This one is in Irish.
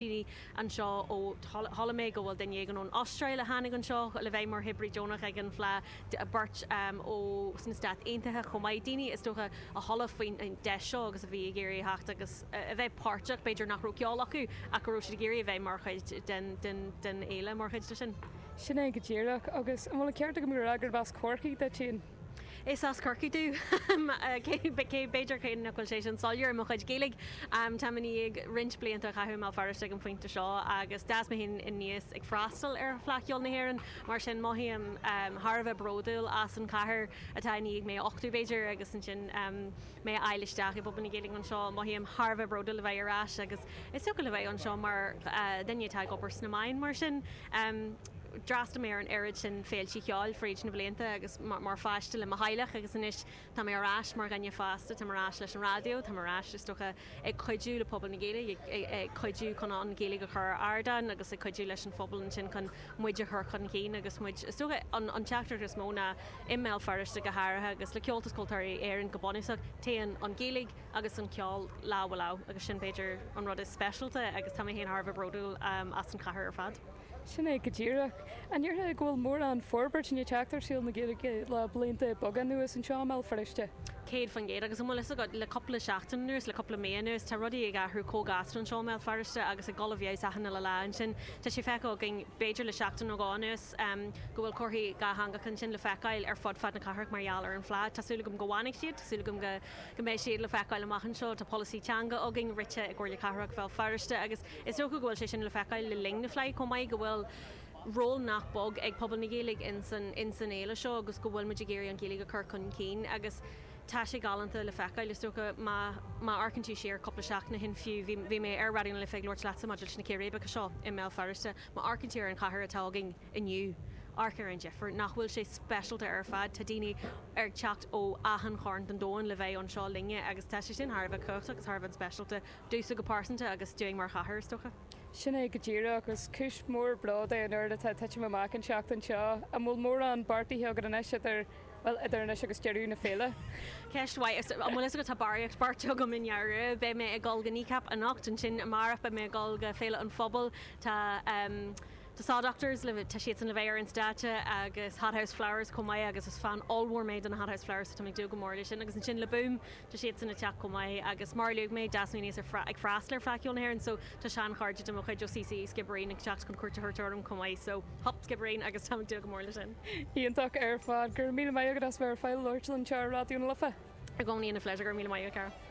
daoine anseo ó, chuala mé go bhfuil duine éigin ón Astráil a tháinig anseo le bheith mar oibrí deonach ag an Fleá, beirt ó na Stáit Aontaithe chomh maith, daoine, is dócha, a chuala faoin deis seo agus a bhí ag iarraidh a theacht agus a bheith páirteach, b'fhéidir nach raibh ceol acu ach go raibh siad ag iarraidh a bheith mar chuid den fhéile, mar chuid de sin. Sin é go díreach. Agus an bhfuil an ceart agam gurb as Corcaigh duit féin? Is as Corcaigh dom, cé, b'fhéidir, cé nach bhfuil sé sin soiléir i mo chuid Gaeilge. Táim i ndiaidh roinnt blianta a chaitheamh i mBéal Feirste ag an phointe seo agus d'fhás mé féin aníos ag freastal ar Fleadh Cheoil na hÉireann, mar sin mothaím thar a bheith bródúil as an chathair atá i ndiaidh mé a uchtú, b'fhéidir, agus ansin mé a fháil isteach i bpobal na Gaeilge anseo. Mothaím thar a bheith bródúil a bheith ar ais agus is ócáid a bheith anseo mar dhuine atá ag obair sna meáin, mar sin. D'fhreastail mé ar an oiread sin féilte cheoil fríd na blianta agus mar pháiste le mo theaghlach agus anois tá mé ar ais mar dhuine fásta, táim ar ais leis an raidió, táim ar ais, is dócha, ag cuidiú le pobal na Gaeilge, ag cuidiú chun an Ghaeilge a chur ar ardán agus ag cuidiú leis an phobal ansin chun muid a chur chun cinn agus muid, is dócha, an teachtaireacht is mó ná, i mBéal Feirste go háirithe agus le Comhaltas Ceoltóirí Éireann go bunúsach, téann an Ghaeilge agus an ceol lámh ar lámh agus sin b'fhéidir an rud is speisialta agus tá mé féin thar a bheith bródúil as an chathair ar fad. Sin é go díreach. An ndéarfá go bhfuil mórán forbairt tar éis teacht ar shaol na Gaeilge le blianta beaga anuas anseo i mBéal Feirste? Céad faoin gcéad. Agus an bhfuil fhios agat, le cupla seachtain anuas, le cupla mí anuas, tá rudaí ag athrú chomh gasta anseo i mBéal Feirste agus ag dul i bhfeabhas achan uile lá ansin. Tá sé feicthe againn, b'fhéidir le seachtain nó dhó anuas, go bhfuil comharthaí dhátheangacha ansin le feiceáil ar fud fad na cathrach mar gheall ar an Fhleá. Tá súil agam go bhfanfaidh siad. Tá súil agam go mbeidh siad le feiceáil amach anseo. Tá polasaí teanga againn, rite i gComhairle Cathrach Bhéal Feirste agus. Is dócha go bhfuil sé sin le feiceáil le linn na Fleidhe chomh maith, go bhfuil ról nach beag ag pobal na Gaeilge ins an fhéile seo agus go bhfuil muid ag iarraidh an Ghaeilge a chur chun cinn agus tá sé galánta le feiceáil. Is dócha, má amharcann tú siar cúpla seachtain ó shin fiú, bhí mé ar Raidió na Life ag labhairt leatsa maidir leis na círéibeacha seo i mBéal Feirste, má amharcann tú ar an chathair atá againn inniu, amharc ar an difir. Nach bhfuil sé speisialta ar fad, tá daoine ag teacht ó achan chearn den domhan le bheith anseo linne agus tá sé sin thar a bheith cumhachtach agus thar a bheith speisialta. Domh go pearsanta agus dúinn mar chathair, is dócha. Sin é go díreach, agus cúis mhór bróid é an oiread atá ag titim amach an tseachtain seo. An bhfuil mórán beartaithe agat anois idir, bhuel, idir anois agus deireadh na féile? Ceist mhaith. Is, an bhfuil fhios agat, tá barraíocht beartaithe agam i ndáiríre. Beidh mé ag dul go Kneecap anocht, ansin amárach beidh mé ag dul go Féile an Phobail, tá ehm The Saw Doctors le, tá siadsan le bheith ar an stáitse agus Hothouse Flowers chomh maith agus is fan ollmhór mé de na Hothouse Flowers so tá mé ag dúil go mór leis sin agus ansin le Boom, tá siadsan ag teacht chomh maith agus mar a luaigh mé d'fhás mé aníos ag freastal ar Fleadh Cheoil na hÉireann so tá sean chairde de mo chuid ó CCÉ Sciobairín ag teacht chun cuairt a thabhairt orm chomh maith so hup Sciobairín agus táim ag dúil go mór le sin. Iontach ar fad. Go raibh míle maith agat as bheith ar fáil labhairt linn anseo ar Raidió na Life. I gcónaí ina phléisiúr. Go raibh míle maith agat, a chara.